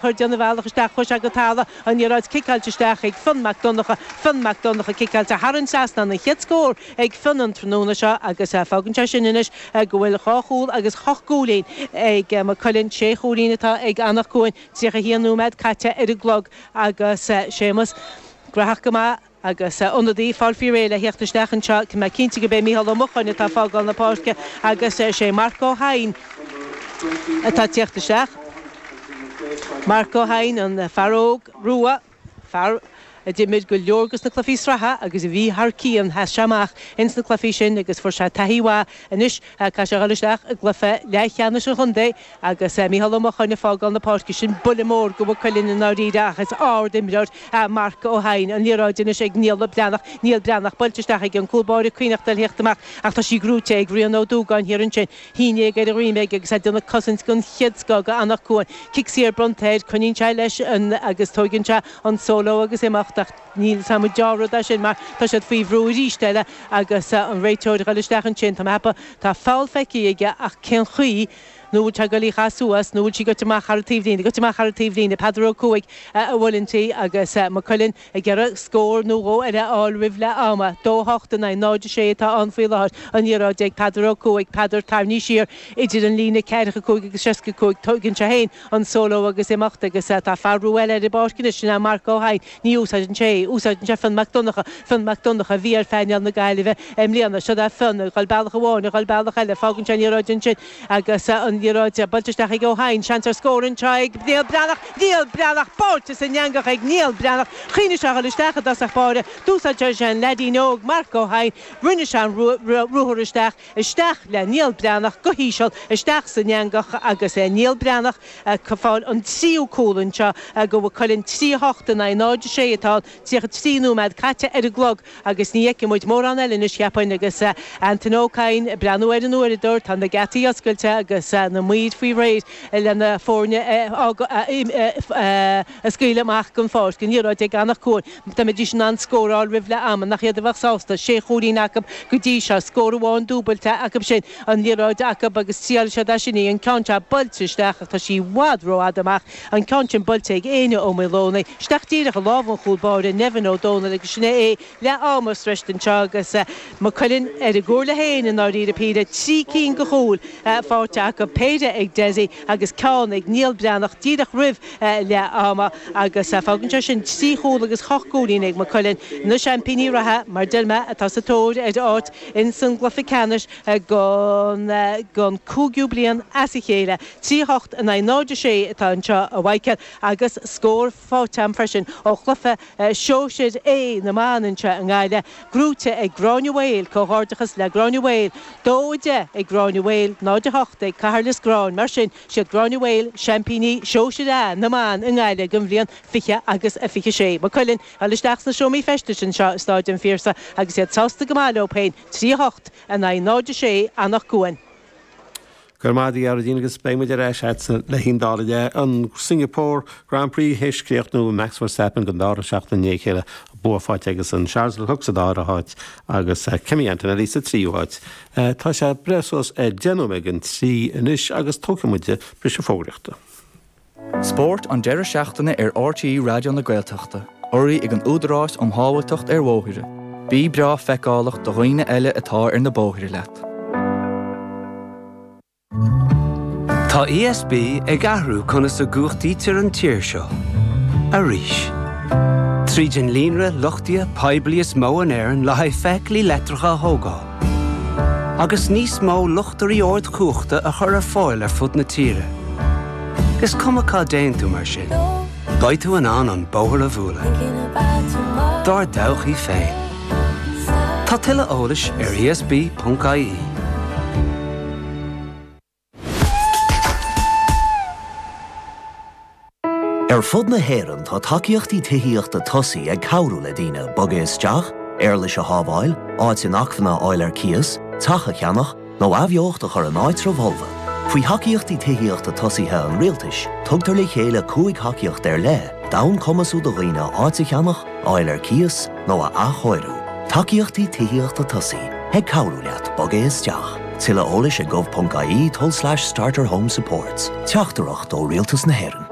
ag déanamh a bhealach isteach cois an Talla, an liathróid ciceáilte isteach ag Fionn Mac Donnacha, Fionn Mac Donnacha ciceáilte thar an trasnán, an chéad scór ag Fionn an tráthnóna seo agus fágann sé sin anois go bhfuil dhá chúl agus a hocht gcúilín ag Maigh Cuilinn, sé chúilín atá ag Anach Cuain, 31 nóiméad caite ar an gclog agus Séamus, gnóthach go maith. agus ionadaí ag fáil faoi réir le thíocht isteach anseo. Tá mé cinnte gurb é Micheál Ó Mocháin, atá ag fágáil na páirce, agus is é Marc Ó hEidhin atá ag tíocht isteach. Marc Ó hEidhin, an fear óg, rua, fear a d'imir go leor go na cluichí sraithe agus a bhí thar cionn, sheas sé amach ins na cluichí sin agus fuair sé taithí mhaith. Anois tá sé ag dul isteach i gcluiche leathcheannais an chontae. Agus Micheál Ó Mocháin ag fágáil na páirce, sin buille mór go Mhaigh Cuilinn i ndáiríre ach is ard-imreoir é Marc Ó hEidhin. An liathróid anois ag Niall Breathnach, Niall Breathnach, buailte isteach aige, an cúl báire ag cuimhneachtáil thíocht amach ach tá sí gnóite ag Rian Ó Dúgáin thiar ansin. Geansaí ar a dhroim aige agus é ag déanamh cosaint gon chéad scoth go Anach Cuain. Cic saor bronnta air, coinníonn sé leis agus tóigeann sé an solo agus imeacht ach. Níl a fhios agam an dea-rud é sin mar tá siad faoi bhrú aríst eile agus an réiteoir a ghoil isteach ansin. Tá mé ag ceapadh tá foul feicthe aige ach cén chaoi nó bhfuil sé ag goil dhá chaitheamh suas nó bhfuil sí goite amach thar an taobhlíne, goite amach thar an taobhlíne. Peadar Ó Cuaig ag goil inti agus Maigh Cuilinn ag iarraidh scór nó dhó eile a fháil roimh leath ama. Dó a hocht in aghaidh 0 a sé atá ann faoi láthair. An liathróid ag Peadar Ó Cuaig. Peadar, tarraingt siar idir an líne ceathracha cúig agus seasca cúig. Tóigeann sé féin an solo agus imeacht agus tá fear úr eile ar an bpáirc anois, sin é Marc Ó hEidhin. Ní úsáideann sé é. Úsáideann sé Fionn Mac Donncha, Fionn Mac Donncha a bhí ar phainéal na Gaillimhe i mbliana. Siod é Fionn, ag dhul bealach amháin, ag dhul bealach eile. Fágann sé an liathróid ansin agus an liathróid buailte isteach ag Ó hEidhin. Seans ar scór anseo ag Niall Breathnach. Niall Breathnach! Buailte san eangach ag Niall Breathnach. Choinnigh sé a dhul isteach i dtosach báire. D'úsáid sé an leaidín óg, Marc Ó hEidhin. Rinne sé an ruathar isteach. Isteach le Niall Breathnach go híseal isteach san eangach agus Niall Breathnach ag fáil an tríú cúl ansin go Mhaigh Cuilinn, 3-8 in aghaidh 0-6 atá ann, 33 nóiméad caite ar an gclog agus ní fheicfidh muid mórán eile anois, cheapfainn, agus Antaine Ó Cadhain ag breathnú ar an uaireadóir. Tá na geataí oscailte agus na maoir faoi réir leis na foirne a scaoileadh amach gon pháirc. An liathróid ag Anach Cuain. Dá mbeidís in ann scóráil roimh leath ama nach iad a bheadh sásta, sé chúilín acub go dtí seo, scór amháin dúbailte acub sin, an liathróid acub agus triailfidh siad as sin í, an ceann seo buailte isteach ach tá sí i bhfad romhat amach, an ceann sin buailte ag Éinne Ó Maolomhnaigh isteach díreach i lámha an chúl báire, Nevin Ó Dónaill agus sin é é, leath ama sroichte anseo agus Maigh Cuilinn ar a gcomhairle féin i ndáiríre, péire, trí cinn go chúil faighte acub, péire ag Dessie agus ceann ag Niall Breathnach díreach roimh leath ama agus fágann sé sin trí chúl agus a hocht gcúilín ag Maigh Cuilinn. Na seaimpíní reatha, mar deir mé, atá sa tóir ar áit ins an gcluiche ceannais don cúigiú bliain as a chéile. Trí a hocht in aghaidh 0 a sé atá anseo a Mhichíl agus scór faighte a'm freisin ó chluiche Sóisear A na mban anseo i nGaillimh, gnóite ag Gráinne Mhaol, comhghairdeachas le Gráinne Mhaol. Dó a deich ag Gráinne Mhaol, 0 a hocht ag Cathair Loistreáin. Mar sin. Siad Gráinne Mhaol seaimpíní sóisear A na mban i nGaillimh don bhliain 20 agus 26. Maigh Cuilinn ag dul isteach sna seomraí feistis anseo i Stáid an Phiarsaigh agus iad sásta go maith leo féin, 3 8 in aghaidh 0 6, Eanach Dhúin. Go raibh maith agat a Dharren agus beidh muid ar ais agatsa le haon scór eile an Singapore Grand Prix théis críochnú Max Verstappen don dara seachtain i ndiaidh a chéile bua faighte agus an Charles Leclerc sa dara háit agus Kimi Antonelli sa tríú háit. Eh, tá sé breá suas ag déanamh ar an trí anois agus tógfaidh muide briseadh fógraíochta. Spórt an deireadh seachtaine ar RTÉ Raidió na Gaeltachta, urraithe ag an Údarás um Shábháilteacht ar Bhóithre. Bí breá feiceálach do dhaoine eile atá ar na bóithre leat. Tá ESB ag athrú conas a gcumhachtaítear an tír seo. Arís. Tríd an líonra luchtaithe poiblí is mó in Éirinn le haghaidh feithiclí leictreacha a thógáil. Agus níos mó luchtairí ardchumhachta a chur ar fáil ar fud na tíre. Is cuma cá dtéann tú mar sin. Beidh tú in ann an bóthar a bhualadh. Dár dtodhchaí féin. Tá tuilleadh eolais ar ESB.ie. Ar fud na hÉireann tá Tacaíochtaí Tithíochta Tosaigh ag cabhrú le daoine bogadh isteach, éarlais a shábháil, áit inacmhainne a fháil ar cíos, teach a cheannach, nó athbheocht a chur in áitreabh folamh. Faoi thacaíochtaí tithíochta tosaigh an Rialtais, tugtar le chéile cúig thacaíocht ar leith d'fhonn cumasú do dhaoine áit a cheannach, a fháil ar cíos, nó a athchóiriú. Tacaíochtaí tithíochta tosaigh Ag cabhrú leat bogadh isteach. Tuilleadh eolais ag gov.ie tulslais starter home supports. Teachtaireacht ó Rialtas na hÉireann.